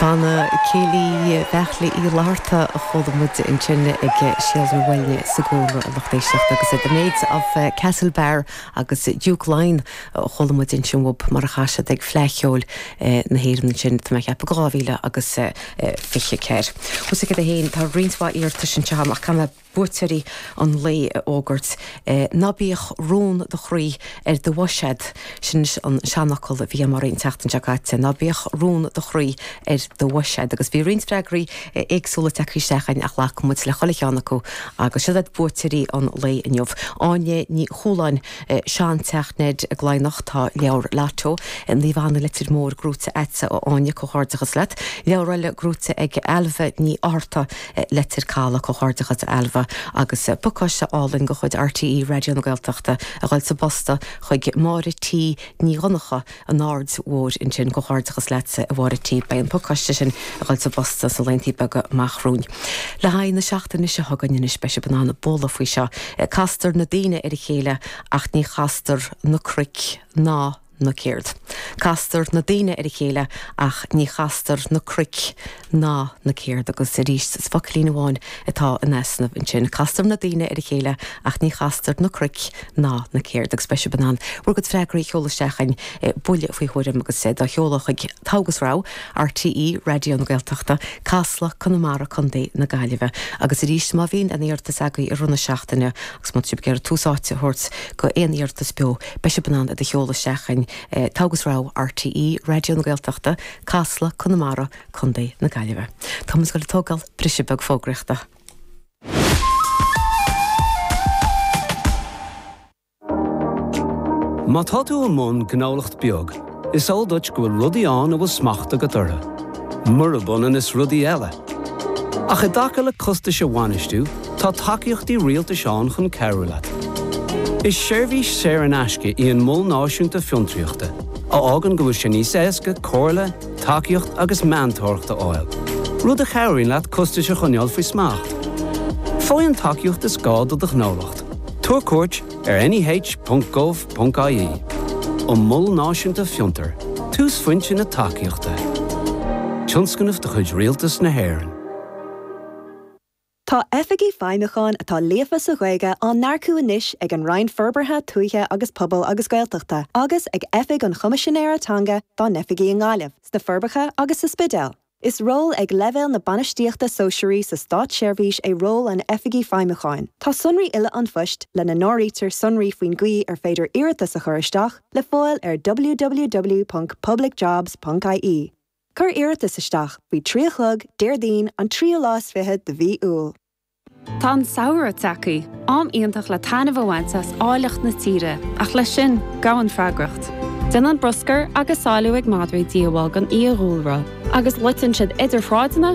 Banna Céilí Bheartla Uí Fhlatharta a chuala muid ansin ag Seal na bhFoighne sa gcúlra, a lucht éisteachta, agus The Maids of Castlebar agus Duke Lyon a chuala muid ansin uathub mar a chas siad ag Fleadh Cheoil na hÉireann ansin, tá mé ag ceapadh, 2024. Bhuel, tá a fhios agat fhéin, tá roinnt mhaith iarratais anseo ach caithfidh mé. buaiteoirí an lae a fhógairt. Ná bíodh rún do chroí ar do bhois agat, sin an seanfhocal a bhí agam dhaoibh an tseachtain seo caite, ná bíodh rún do chroí ar do bhois agat. Agus bhí roinnt freagraí éagsúla tagtha isteach againn ach ghlac muid le chuile cheann acu agus siod iad buaiteoirí an lae inniu. Áine Ní Chualáin, Seanteach Ned i gCladhnach, tá leabhar Lotto, Naomh Anna Leitir Móir, gnóite agat, a Áine, comhghairdeachas leat. Leabhar eile gnóite ag Ailbhe Ní Fhátharta, Leitir Calaidh, Comhghairdeachas a Ailbhe agus pacáiste álainn de chuid RTÉ Raidió na Gaeltachta a ghoil sa bpost chuig Máire T. Ní Dhonnacha, An Aird Mhóir ansin. Comhghairdeachas leatsa a Mháire T. Beidh an pacáiste sin a ghoil sa bpost sna laethanta beaga amach romhainn. Le haghaidh na seachtaine seo chugainn anois beidh sibh in ann bualadh faoi seo, Castar na daoine ar a chéile ach ní chastar na cnoic ná. na céard. Castar na daoine ar a chéile ach ní chastar na cruic ná na céard. Agus arís is focailín amháin atá in easnamh ansin. Castar na daoine ar a chéile ach ní chastar na cruic ná na céard. Agus beidh sibh in ann bhur gcuid freagraí a sheoladh isteach chugainn, buille faoi thuairim agus iad á sheoladh chuig, Togha is Rogha, RTÉ Raidió na Gaeltachta, Casla, Conamara, Co. na Gaillimhe. Agus arís má bhíonn aon iarratas agaibh i rith na seachtaine agus má tá sibh ag iarraidh tús áite a thabhairt go aon iarratas beo, Beidh sibh in ann iad a sheoladh isteach chugainn, Togha is Rogha, RTÉ Raidió na Gaeltachta, Casla, Conamara, Co. na Gaillimhe. Tá muid ag goil ag tógáil briseadh beag fógraíochta. Má tá tú i mbun gnólacht beag. Is eol duit go bhfuil rudaí ann a bhfuil smacht agat orthu, murab ionann is rudaí eile. Ach i dtaca le costais a bhainistiú, tá tacaíochtaí rialtais ann chun cabhrú leat. Is seirbhís saor in aisce í an Mol Náisiúnta Fiontraíochta, a fhágann go bhfuil sé níos éasca comhairle, tacaíocht agus meantóireacht a fháil, rud a chabhraíonn leat costais a choinneáil faoi smacht. Faigh an tacaíocht is gá do do ghnólacht. Tabhair cuairt. ar neh.gov.ie An Mol Náisiúnta Fiontair, túsphointe na tacaíochta, tionscnamh de chuid Rialtas na hÉireann. Tá Oifigigh Feidhmiúcháin atá líofa sa Ghaeilge á n-earcú anois ag an Roinn Forbartha Tuaithe agus Pobail agus Gaeltachta agus ag Oifig an Choimisinéara Teanga dá n-oifigí i nGaillimh, sna Forbacha agus sa Spidéal. Is ról ag leibhéal na bainistíochta sóisearaí sa státseirbhís é ról an Oifigigh Feidhmiúcháin. Tá sonraí uile an phoist, lena n-áirítear sonraí faoin gcaoi ar féidir iarratas a chur isteach, le fáil ar www.publicjobs.ie. Cuir iarratas isteach faoi trí a chlog Déardaoin an tríú lá is fiche de mhí Iúil. Tá an samhradh tagtha, am iontach le taitneamh a bhaint as áilleacht na tíre, ach leis sin, gabhann freagracht. Déanann bruscar agus salú ag madraí díobháil don fhiadhúlra, agus loiteann siad idir shráideanna,